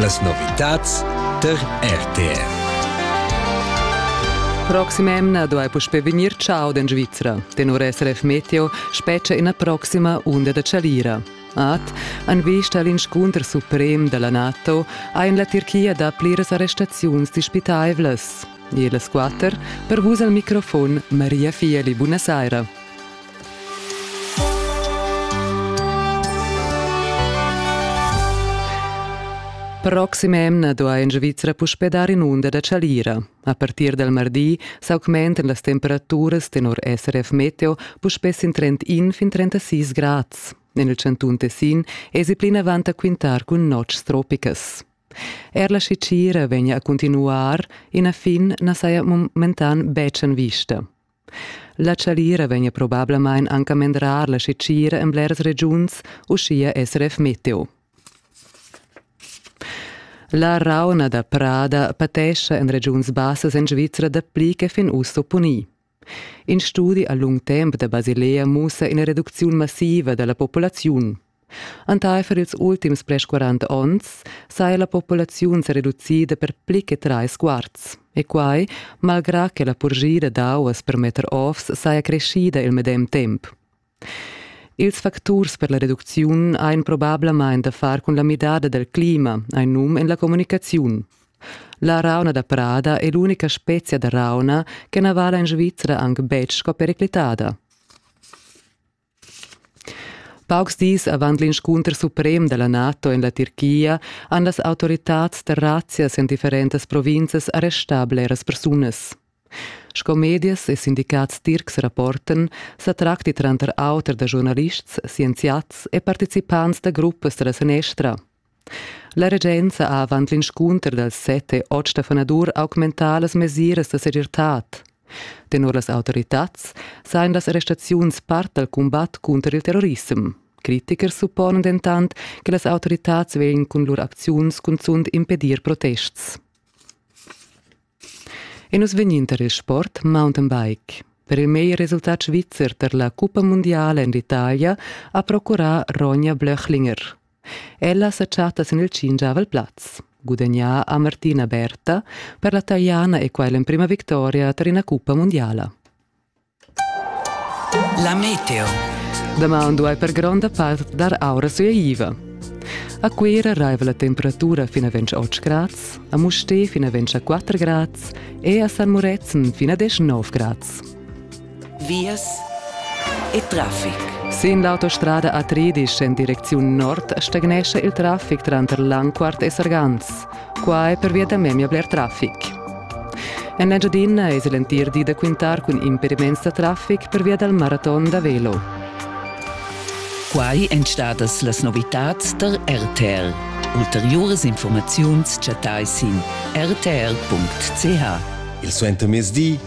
Las novitads tar RTR. Proxim'emna duai puspè vegnir chau en Svizra. Tenor SRF Meteo spetga ina proxima unda da chalira. Ad, en vista all'inscunter suprem da la NATO, ha en la Tirchia dapli arrestaziuns dispitaivlas. E las quatter, per vus al microfon Maria Fieli, buonasera. Proxima emna duai en Svizra puspè dar in'unda da chalira. A partir dal mardi s'augmentan las temperaturas tenor SRF Meteo puspè sin trend in fin 36 grads. En il chantun Tessin èsi plinavant a quintar cun notgs tropicas. Er la scicira vegna a cuntinuar, ina fin na saja momentan betg en vista. La chalira vegn probablamain anca mendrar la setgira en bleras regiuns, uschia SRF Meteo. La rauna da prada patescha en regiuns bassas en Svizra dapli che fin uss opponì. In studi a lung temp da Basilea mussa ina reducziun massiva da la populaziun. Entaifer ils ultims ples 40 onns sa è la populaziun sa reducida per pli che trais quarts. E quai malgrà che la purgira d'auas per metter ovs saja creschida il medem temp. Ils facturs per la reducziun ein probablamain da far cun la midada del clima, ein num en la communicaziun. La rauna da prada è l'unica spezia da rauna che na vala in Svizzera anc betg sco periclitada. Paucs dis avant l'inscunter suprem da la NATO en la Tirchia han las autoritads da razzias en differentas provinzas arrestà bleras persunas. Sco medias e sindicats tircs rapportan, sa tracti tranter auter da giornalists, scienziats e participants da gruppas da la sanestra. La regenza ha avant l'inscunter dals set e otg da fanadur augmentà las mesiras da segirtad. Tenor las autoritads sajan las arrestaziuns part dal cumbat cunter il terrorissem. Critichers supponan dentant che las autoritads vegn cun lur acziuns cunzunt impedir protests. E nus vegnin tar il sport mountainbike. Per il meglier resultat svizzer tar la cuppa mundiala en l'Italia ha procurà Ronja Blöchlinger. Ella sa chatta sin il tschinchavel plaz. Gudagnà ha Martina Berta per la Taliana e quai l'emprima victoria tar ina cuppa mundiala. La meteo. Daman duai per gronda part dar aura suaiva. A Cuira raiva la temperatura fin a 28 grads, a Mustè fin a 24 grads e a San Murezzan fin a 19 grads. vias e traffic. Sin l'autostrada a Tridisch en direcziun nord stagnescha il traffic tranter Langquart e Sargans. Qua è pervia da memia bler traffic. En Engiadina es il entir di da quintar cun impediments da traffic pervia dal maraton da velo. Quai èn stadas las novitads tar RTL. Ulteriuras informaziuns chattai sin rtl.ch. Il suentermezdi